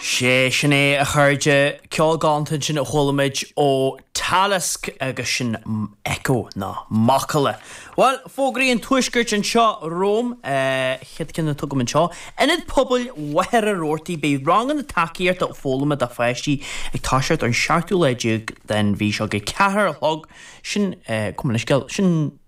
Sé sin é a chairde, ceol galanta sin a chuala muid ó Talisk agus sin Echo nó macalla. Bhuel, fógraí an tuaiscirt anseo romham, chéad cheann a thugaim anseo, Ionad Pobail Mhachaire Rabhartaigh, beidh ranganna tacaíochta foghlama do pháistí ag toiseacht ar an seachtú lá déag den mhí seo ag a ceathair a chlog, sin, gabh mo leithscéal, sin.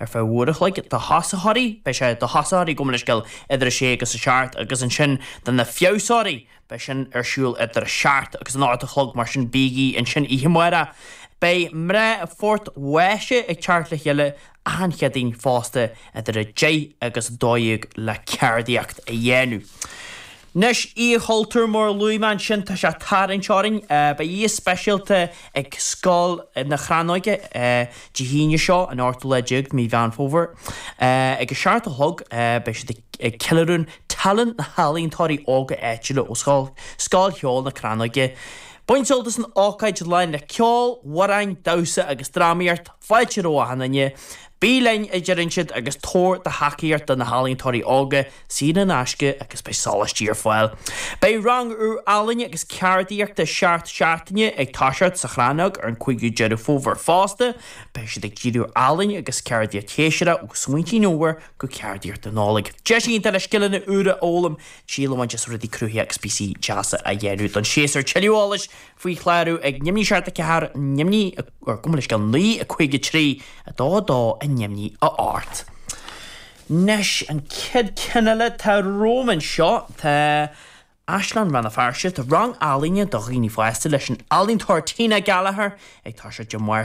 Ar feadh uair a chloig do thosaitheoirí, beidh sé do thosaitheoirí gabh mo leithscéal idir a sé agus a seacht agus ansin do na feabhsóirí, beidh sin ar siúl idir a seacht agus an ocht a chlog mar sin bígí ansin oíche amárach. Beidh mná Phort Mhaise ag teacht le chéile achan Chéadaoin fosta idir a deich agus a dó dhéag le ceardaíocht a dhéanamh. Anois Oíche Chultúir mar a luaigh mé ansin tá sé ag tarraingt orainn. Beidh oíche speisialta ag Scoil na Crannóige Dé hAoine seo, an 18ú de mhí Mheán Fómhair. Ag a seacht a chlog beidh siad ag ceiliúradh tallann na healaíontóirí óga áitiúla ó Scoil Cheoil na Crannóige. Bain sult as an ócáid lán le ceol, amhráin, damhsa agus drámaíocht. Fáilte roimh achan duine. Bí linn, a deireann siad, agus tabhair do thacaíocht do na healaíontóirí óga, saor in aisce agus beidh sólaistí ar fáil. Beidh rang úr ealaíne agus ceardaíochta seacht seachtaine ag toiseacht sa Chrannóg ar an 5ú Deireadh Fómhair fosta, beidh siad ag díriú ar ealaín agus ceardaíocht shéasúrach ó smaointí an fhómhair go ceardaíocht na Nollag. Deis iontach le scileanna úra a fhoghlaim, triail a bhaint as rudaí cruthaitheacha agus píosaí deasa a dhéanamh don séasúr. Tuilleadh eolais faoi chlárú ag neamhní seacht 4 neamhní. gabh mo leithscéal naoi a 5, 3, 2, 2 a neamhní a hocht. Anois, an chéad cheann eile atá romham anseo, tá Áislann Rann na Feirste, tá rang ealaíne do dhaoine fásta leis an ealaíontóir Tina Gallagher ag tosú Dé Máirt.